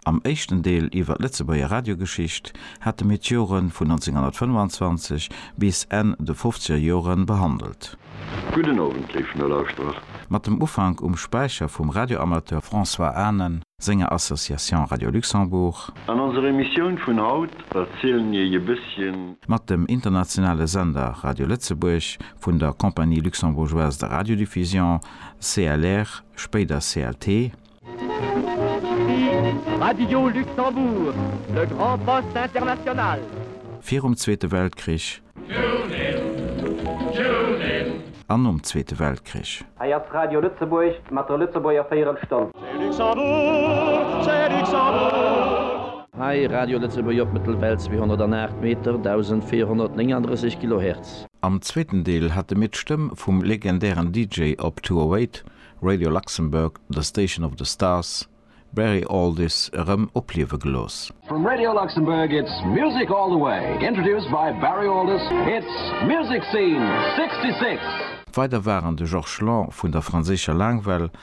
Am éischten Deel iwwer d'Lëtzebuerger Radiogeschicht hate mir d'Jore vun 1925 bis Enn de fofzeger Jore behandelt. Gudden Owend, léif Nolauschterer. Mat dem Ufank um Späicher vum Radioamateur François Anen senger Association Radio Luxembourg. An onser Emissioun vun haut erzielen mir iech e bësschen. Mat dem internationale Sender Radio Lëtzebuerg vun der Compagnie Luxembourgeoise de Radiodiffusion, CLR, spéider CLT. Radio Luxembourg, le grand poste international. Virum Zweete Weltkrich. Tunin, tunin. An nom Zweete Weltkrich. Hei ass Radio Lëtzebuerg mat der Lëtzebuerger Véierelstonn. C'est Luxembourg, c'est Luxembourg. Hei Radio Lëtzebuerg op Mëttelwell 208 Meter, 1439 Kilohertz. Am zweeten Deel hate mir d'Stëmm vum legendären DJ op 208, Radio Luxembourg, The Station of the Stars, Barry Alldis erëm opliewe gelooss. From Radio Luxembourg it's music all the way, introduced by Barry Alldis, it's Music Scene 66! Weider waren de Georges Lang vun der franséischer Laangwell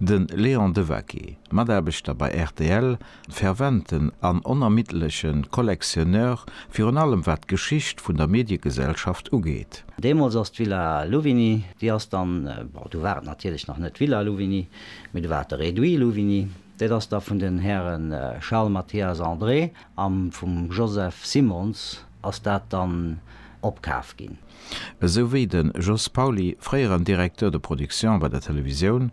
De Léon Devaqué, Mataarbechter bei rtl, ferventen an onermiddlege Collectionneur, virun allem wat d'Geschicht vun der Mediegesellschaft ugeet. Deemools ass d'Villa Louvigny, déi ass dann, bon, du war et natierlech nach net d'Villa Louvigny, mee du war et de Réduit Louvigny, dat ass da vun den Häre Charles Mathias André a vum Joseph Simons Ass dat dann opkaf ginn? Esou wéi de Jos Pauly, fréieren Directeur de production bei der Televisioun,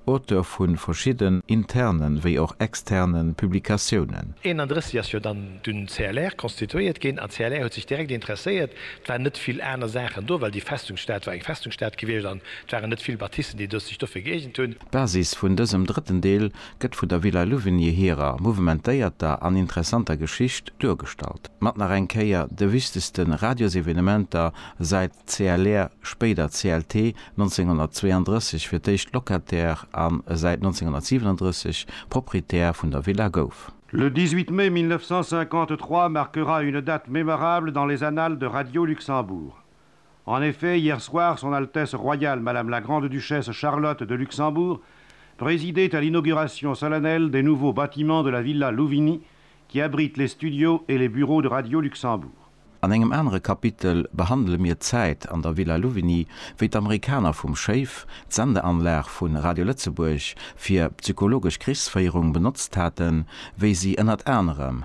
Auteur vu verschidden interne wéi och externe Publikatiounen. 31 ass jo dann dun CLR constituéiert ginn, an CLR huet sech direkt interesséiert. Et waren net vill aner Saachen do, well déi Festungsstad war eng Festungsstad gewiescht, an et waren net vill Bâtissen, déi sech dofir geeegent hunn. D'Basis vun dësem drëtten Deel gëtt vun der Villa Louvigny hirer mouvementéierter an interessanter Geschicht duergestallt, mat nach eng Kéier de wichtegste Radiosevenementer säit CLR, spéider CLT, 1932 fir d'éischt Locataire a säit 1937 Proprietär vun der Villa gouf. Le 18 mai 1953 marquera une date mémorable dans les annales de Radio Luxembourg. En effet, hier soir, Son Altesse Royale Madame la Grande-Duchesse Charlotte de Luxembourg présidait à l'inauguration solennelle des nouveaux bâtiments de la Villa Louvigny qui abrite les studios et les bureaux de Radio Luxembourg. An engem anere Kapitel behandele mir d'Zäit an der Villa Louvigny, wéi d'Amerikaner vum Schéif d'Sendeanlag vu Radio Lëtzebuerg fir psychologesch Krichsféierung benotzt haten, wéi si ënnert anerem